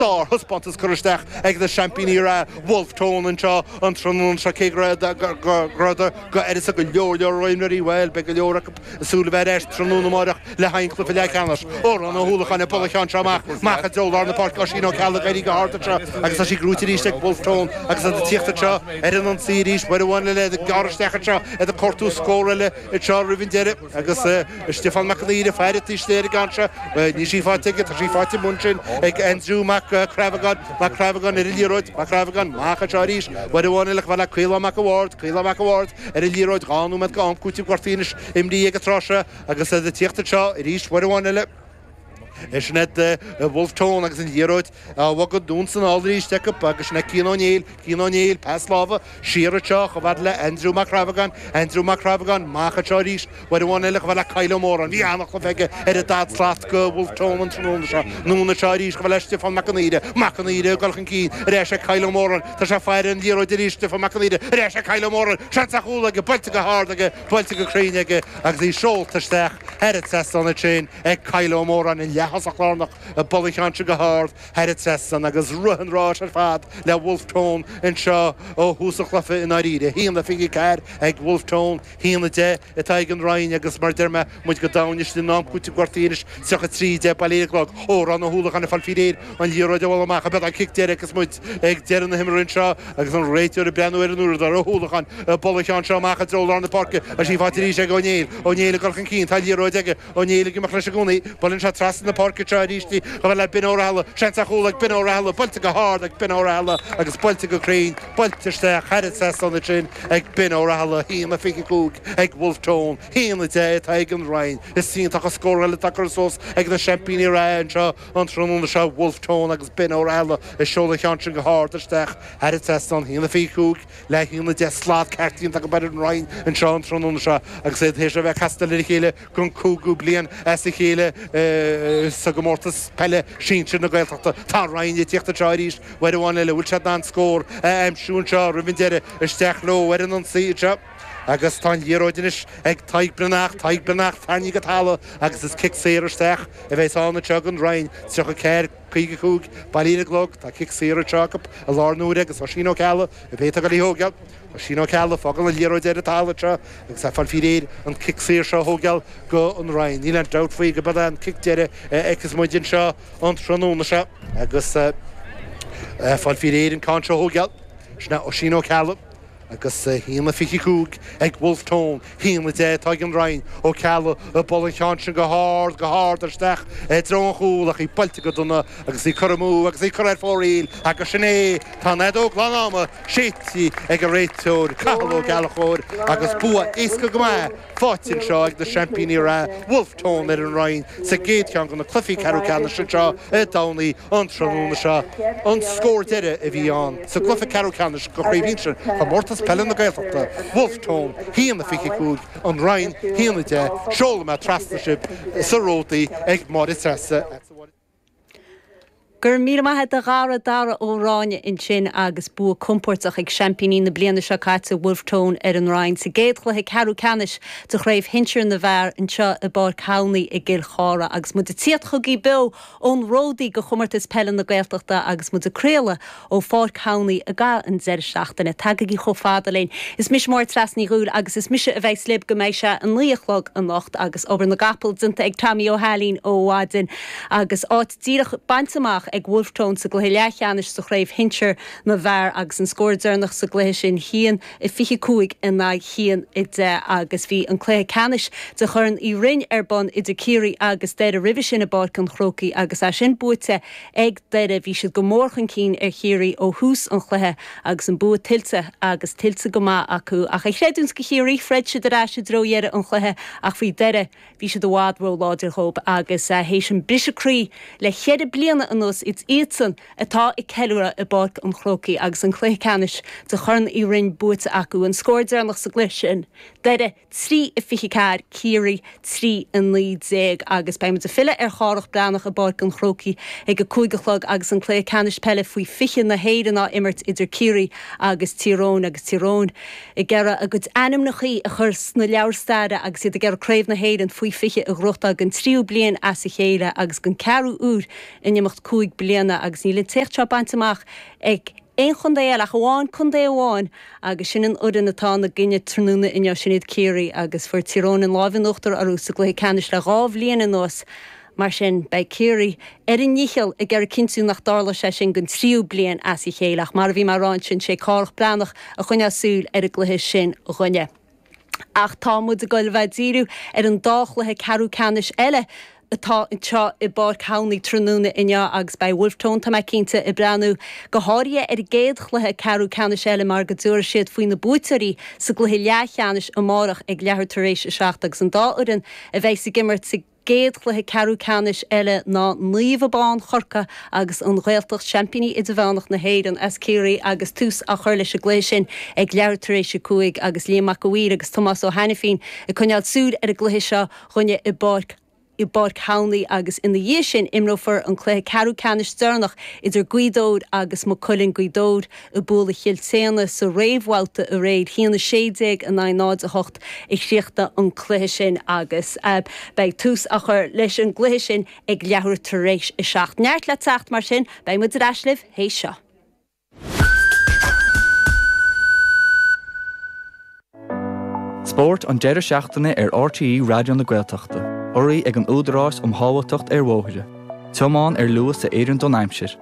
Sárthaispeántas curtha isteach ag na seaimpíní reatha Bhulf Tón anseo an tráthnóna seo. Cé go rabhadar d'uireasa go leor leor imreoirí, bhuel, beidh go leor acu ag súil a bheith ar ais tráthnóna amáireach le haghaidh an chluiche leathcheannais. Odhrán Ó hUallacháin ag bualadh an cheann seo amach, amach i dtreo lár na páirce, Oisín Ó Ceallaigh ag éirí go hard anseo agus tá sí gnóite arís ag Bhulf Tón agus iad ag tíocht anseo ar an ionsaí arís. Uair amháin eile iad ag gearradh isteach anseo, iad ag cuartú scór eile anseo roimh an deireadh. Agus Stiofán Mac an Aoire, fear an t-sléirigh anseo, níl sí faighte aige, tá sí faighte amuigh ansin ag Aindriú Mac Craibheagáin, Mac Craibheagáin ar an liathróid, Mac Craibheagáin amach anseo arís, uair amháin eile, chomh fada le Caolán Mac an Bhaird, Caolán Mac an Bhaird ar an liathróid, dhá nóiméad go am cúitimh gortaithe anois imrithe ag an tráth seo agus iad ag tíocht anseo arís uair amháin eile. Sin iad Bhulf Tón agus an liathróid á bogadh anonn is anall arís acu agus sin ag Cian Ó Néill, Cian Ó Néill, pas láimhe siar anseo chomh fada le Aindriú Mac Craibheagáin, Aindriú Mac Craibheagáin, amach anseo arís, uair amháin eile chomh fada le Kyle Ó Móráin, bhí an-chluiche aige ar an daichead slat go Bhulf Tón an tráthnóna seo, anonn anseo arís chomh fada le Stiofán Mac an Aoire, Mac an Aoire ag dul chun cinn, ar ais ag Kyle Ó Móráin, tá sé ag faire an liathróid arís Stiofán Mac an Aoire, ar ais ag Kyle Ó Móráin, seans ar chúl aige, buailte go hard aige, buailte go cruinn aige agus í seolta isteach. Thar an trasnán ansin ag Kyle Ó Móráin, an leath-thosach lárnach ag bualadh an cheann seo go hard thar an trasnán, agus rith an ráis ar fad le Wolfe Tone anseo ó thús an chluife i ndáiríre. Haon a fiche ceathair ag Wolfe Tone, haon a deich atá ag an Rinn agus, mar a deir mé, muid go domhain istigh in am cúitimh gortaithe anois, tríocha trí a deich, bailithe ar an gclog. Odhrán Ó hUallacháin ag fáil faoi réir an liathróid a bhualadh amach, b'fhéidir an cic deiridh agus muid. Ag deireadh na himeartha anseo, agus an réiteoir ag breathnú ar an uaireadóir, Ó hUallacháin, ag bualadh an cheann seo amach i dtreo lár na páirce, tá sí faighte arís ag Ó Néill. Ó Néill ag dul chun cinn, tá an liathróid aige, Ó Néill ag imeacht leis i gcónaí, buaileann sé trasna na páirce anseo arís chomh fada le Ben Ó Rathaille, seans ar chúl ag Ben Ó Rathaille, buailte go hard ag Ben Ó Rathaille agus buailte go cruinn, buailte isteach thar an trasnán ansin ag Ben Ó Rathaille, 1-25 ag Bhulf Tón, 1-10 atá ag an Rinn. Is iontach an scóráil atá curtha suas ag na seaimpíní reatha anseo. An tráthnóna seo ag Wolfe Tone agus Ben Ó Rathaille ag seoladh an cheann sin go hard isteach thar an trasnán haon a fiche cúig, le haon a deich, slad ceart déanta acu ar an Rinn anseo an tráthnóna seo agus iad th'éis a bheith casta lena chéile don cúigiú bliain as a chéile sa gcomórtas peile sinsir na Gaeltachta. Tá an Rinn ag tíocht anseo arís, uair amháin eile, an bhfuil siad in ann scór a aimsiú anseo roimh an deireadh? Isteach leo ar an ionsaí anseo. Agus tá an liathróid anois ag Tadhg Breathnach, Tadhg Breathnach, tarraingthe go talamh agus is cic saor isteach a bheas ann anseo ag an Rinn, 34, 55, bailithe ar an gclog, tá cic saor anseo acu i láthair na huaire agus Oisín Ó Ceallaigh ab é atá ag dul í a thógáil, Oisín Ó Ceallaigh, ag fágáil an liathróid ar an talamh anseo agus ag fáil faoi réir an cic saor seo a thógáil go an Rinn, níl aon dabht faoi gurb é an cic deiridh a fheicfeas muid anseo an tráthnóna seo agus ag fáil faoi réir an ceann seo a thógáil, sin é Oisín Ó Ceallaigh. agus haon a fiche a cúig ag Wolfe Tone, haon a deich atá ag an Rinn, Ó Ceallaigh ag bualadh an cheann sin go hard, go hard isteach i dtreo an chúil ach í buailte go dona agus í curtha amú agus í curtha ar fóraoil agus sin é, tá an fheadóg lán-ama séidte ag an réiteoir, Cathal Ó Gallchóir, agus bua éasca go maith. faighte anseo ag na seaimpíní reatha Wolfe Tone ar an Rinn sa gcéad cheann de na cluichí ceathrú ceannais anseo i dTamhnaigh an tráthnóna seo, an scór deiridh a bhí ann sa gcluiche ceathrú ceannais de Chraobh Shinsir Chomórtas Peile na Gaeltachta, Wolfe Tone 1 25 An Rinn 1 10. Seolfaidh mé trasna sibh sa ródaí ag Máire Treasa. Go raibh míle maith agat a Dhara, Dara Ó Ráinne, ansin agus bua compóirteach ag seaimpíní na bliana seo caite, Bhulf Tón, ar An Rinn sa gcéad chluiche ceathrú ceannais de Chraobh Shinsir na bhFear anseo i bPáirc Thamhnaí i gCill Chartha agus muid ag tíocht chugaibh beo ón ródaí ag Comórtas Peile na Gaeltachta agus muid ag craoladh Ó Pháirc Thamhnaí i gcaitheamh an deireadh seachtaine. Tagaigí chomh fada linn. Is mise Máire Treasa Ní Dhubhghaill agus is mise a bheas libh go mbeidh sé a naoi a chlog anocht agus obair na gcapall déanta ag Tommy Ó hAilín ó mhaidin agus áit díreach bainte amach ag Wolfe Tone sa gcluiche leathcheannais sa chraobh shinsir na bhfear agus an scór deireanach sa gcluiche sin haon a fiche cúig in aghaidh haon a deich agus bhí an cluiche ceannais de Chorn Uí Rinn ar bun idir Ciarraí agus Doire roimhe sin i bPáirc an Chrócaigh agus é sin buaite Ag Doire, bhí siad go mór chun cinn ar Chiarraí ó thús an chluiche agus an bua tuillte agus tuillte go maith acu. Ach a chreidiúint do Chiarraí, throid siad ar ais i dtreo dheireadh an chluiche ach bhí Doire, bhí siad i bhfad róláidir dhóib agus théis an briseadh croí le cheithre bliana anuas, is iadsan atá ag ceiliúradh i bPáirc an Chrócaigh agus an cluiche ceannais de Chorn Uí Rinn buaite acu. An scór deireanach sa gcluiche sin, Doire. 3 a 24 Ciarraí 3 a 19 agus beidh muid ag filleadh ar Chárthach Breathnach i bPáirc an Chrócaigh ag a cúig a chlog agus an cluiche ceannais peile faoi 20 na hÉireann á imirt idir Ciarraí agus Tír Eoghain agus Tír Eoghain ag iarraidh a gcuid ainmneacha a chur sna leabhair staire agus iad ag iarraidh Craobh na hÉireann faoi 20 a ghnóthachtáil den tríú bliain as a chéile agus den ceathrú uair in imeacht cúig bliana agus níl an t-éacht seo bainte amach ag aon chontae eile ach amháin contae amháin agus sin an fhoireann atá ina gcoinne tráthnóna inniu, sin iad Ciarraí, agus fuair Tír Eoghain an lámh in uachtar orthu sa gcluiche ceannais le dhá bhliain anuas, mar sin beidh Ciarraí ar a ndícheall ag iarraidh cinntiú nach dtarlóidh sé sin den tríú bliain as a chéile ach, mar a bhí mé a rá ansin, sé Cárthach Breathnach a choinneoidh súil ar an gcluiche sin dhúinne. Ach tá muid ag goil a bheith ag díriú ar an dá chluiche ceathrú ceannais eile atá anseo i bPáirc Thamhnaigh tráthnóna inniu agus beidh Wolfe Tone, tá mé cinnte, ag breathnú go háirithe ar an gcéad chluiche ceathrú ceannais eile mar go dtabharfaidh siad faoi na buaiteoirí sa gcluiche leathcheannais amárach ag leathuair tar éis a seacht agus an dá fhoireann a bheas ag imirt sa gcéad chluiche ceathrú ceannais eile ná Naomh Abán Chorcaí agus An Ghaeltacht, Seaimpíní Idirmheánach na hÉireann as Ciarraí agus tús á chur leis an gcluiche sin ag leathuair tar éis a cúig agus Liam Mac a' Mhaoir agus Tomás Ó hAinifín ag coinneáil súil ar an gcluiche seo dhúinne i bPáirc i bPáirc Thamhnaigh agus ina dhiaidh sin imreofar an cluiche ceathrú ceannais deireanach idir Gaoth Dobhair agus Maigh Cuilinn Gaoth Dobhair. ag bualadh Chill tSéadna sa réamhbhabhta aréir, 1-16 in aghaidh 0-8 a chríochnaigh an cluiche sin agus beidh tús á chur leis an gcluiche sin ag leathuair tar éis a seacht. Neart le teacht mar sin, beidh muid ar ais libh théis seo. Spórt an deireadh seachtaine ar RTÉ Raidió na Gaeltachta, urraithe ag an Údarás um Shábháilteacht ar Bhóithre, tiomáin ar luas a oireann don aimsir.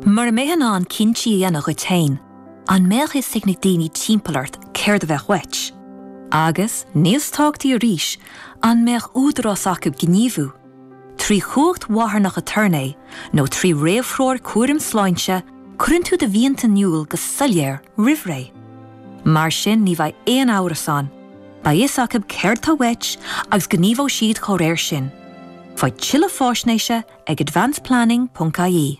Mura mbeifeá in ann cinntí a dhéanamh dhuit féin, an mbeadh fhios ag na daoine timpeall ort céard a bheadh uait? Agus, níos tábhachtaí arís, an mbeadh údarás acu gníomhú? Trí chumhacht mharthanach aturnae nó trí réamhthreoir cúraim sláinte, cuireann tú do mhianta in iúl go soiléir roimh ré. Mar sin ní bheidh aon amhras ann, beidh fhios acu céard atá uait agus gníomhóidh siad dá réir sin. Faigh tuilleadh faisnéise ag advanceplanning.ie.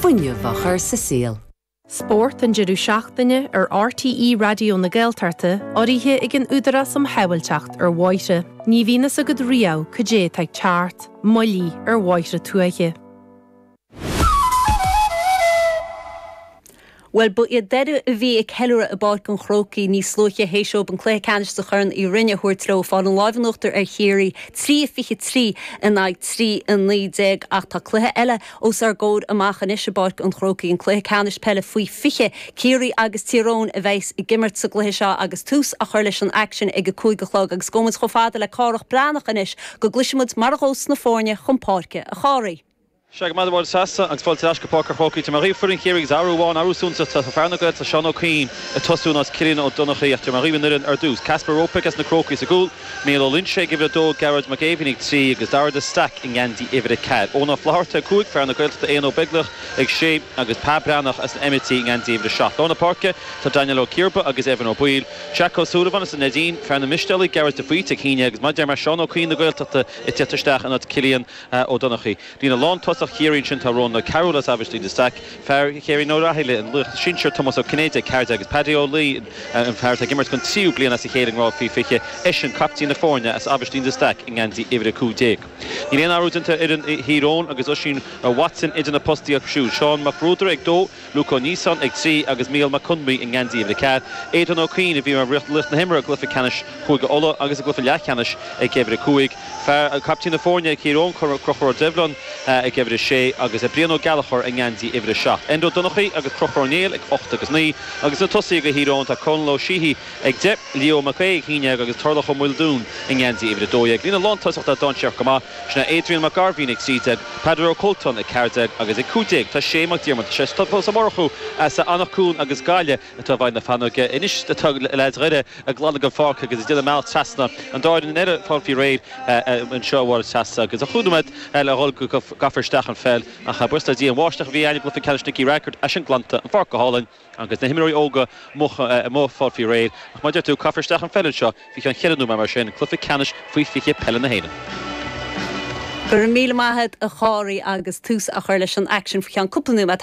fuinneamh a chur sa saol. Spórt an deireadh seachtaine ar RTÉ Raidió na Gaeltachta, urraithe ag an Údarás um Shábháilteacht ar Bhóithre. Ní bhíonn fhios agat riamh cad é atá ag teacht, moilligh ar bhóithre tuaithe. Bhuel, ba iad Doire a bhí ag ceiliúradh i bPáirc an Chrócaigh níos luaithe théis dóibh an cluiche ceannais sa Chorn Uí Rinn a thabhairt leo, ag fáil an láimh in uachtar ar Chiarraí, 3-23 in aghaidh 3-19, ach tá cluiche eile os ár gcomhair amach anois i bPáirc an Chrócaigh, an cluiche ceannais peile faoi 20. Ciarraí agus Tír Eoghain a bheas ag imirt sa gcluiche seo agus tús á chur leis an aicsean ag a cúig a chlog agus gabhfaidh muid chomh fada le Cárthach Breathnach anois go gcloisfidh muid mar a ghabhfas na foirne chun páirce, a Chárthaigh. Sea, go raibh maith agat a Ghearóid, seasta agus fáilte ar ais go Páirc an Chrócaigh. Tabharfaidh mé dhaoibh foireann Chiarraí agus athrú amháin, athrú suntasach. Tá fear na Gaeltachta Seán Ó Cuinn ag tosú in áit Cillian Ó Donnachaidh ach tabharfaidh mé dhaoibh an fhoireann ar dtús. Kacper Robak as na Crócaigh sa gcúl, Mícheál Ó Loingsigh ag uimhir a dó, Gearóid Mac Éimhín ag trí agus Dara de Staic i ngeansaí uimhir a ceathair. Eoin Ó Flatharta ag cúig, fear na Gaeltachta Aodhna Ó Beaglaoich ag sé agus Pa Breathnach as na hEimitigh i ngeansaí uimhir a seacht. Lár na páirce tá Daniel Ó Ciarba agus Evan Ó Baoill, Jack Ó Súilleabháin as an Neidín, fear na Mistéalaigh, Gearóid de Faoite ag 11 agus mar a dúirt mé Seán Ó Cuinn na Gaeltachta ag teacht isteach in áit Cillian Ó Donnchaidh. Líne lántosaigh Chiarraí ansin tá Rónán Ó Cearúil as Aibhistín de Staic, fear Chéirín Ó Rathaille, an laoch sinsir Tomás Ó Cinnéide, ag 14, agus Paddy Ó Laighin, an fear atá ag imirt don tríú bliain as a chéile i ngrád faoi 20, eisean captaen na foirne as Aibhistín de Staic i ngeansaí uimhir 15. Níl aon athrú déanta ar fhoireann Thír Eoghain agus Oisín Watson idir na postaí acu siúd. Seán Mac Bruadair ag dó. Luke Ó Níosáin ag 3 agus Mícheál Mac Conmí i ngeansaí uimhir a ceathair, Aodhán Ó Cuinn, a bhí mar laoch na himeartha i gcluiche ceannais Chúige Uladh agus i gcluiche leathcheannais ag uimhir a cúig, fear caiptín na foirne ag Tír Eoghain, Crochúr Ó Doibhlin ag uimhir a sé, agus Brian Ó Gallchóir i ngeansaí uimhir a seacht. Enda Ó Donnchaidh agus Crochúr Ó Néill ag ocht agus naoi, agus sna tosaithe do Thír Eoghain tá Cónall Ó Síothigh ag deich, Leo Mac Aoidh ag a haon déag agus Tarlach Ó Maoldún i ngeansaí uimhir a dó dhéag. Líne lántosach atá dainséarach go maith. Sna Adrian Mac Gairbhín ag 13, Peadar Ó Colltonn ag 14, agus ag 15, tá Shea Mac Diarmada. Sé Tomás Ó Murchú as Anach Cuain as Gaillimh atá i bhfeighil na feadóige anois, tá leaids Dhoire ag glanadh an pháirc agus ag déanamh a mbealach trasna an doirn in aer ag fáil faoi réir anseo mar atá sé agus chúig nóiméad le dhul go gcaithfear isteach an pheil ach buíochas le Dia an bháisteach a bhí ann i gCluiche Ceannais Nicky Rackard, tá sin glanta, an pháirc go hálainn. Agus na himreoirí óga amuigh ag fáil faoi réir, ach mar a deir tú, caithfear isteach an pheil anseo faoi cheann cheithre nóiméad nó mar sin, cluiche ceannais faoi 20 peile na hÉireann. Go raibh míle maith agat a Phádraig agus tús á chur leis an aicsean faoi cheann cúpla nóiméad.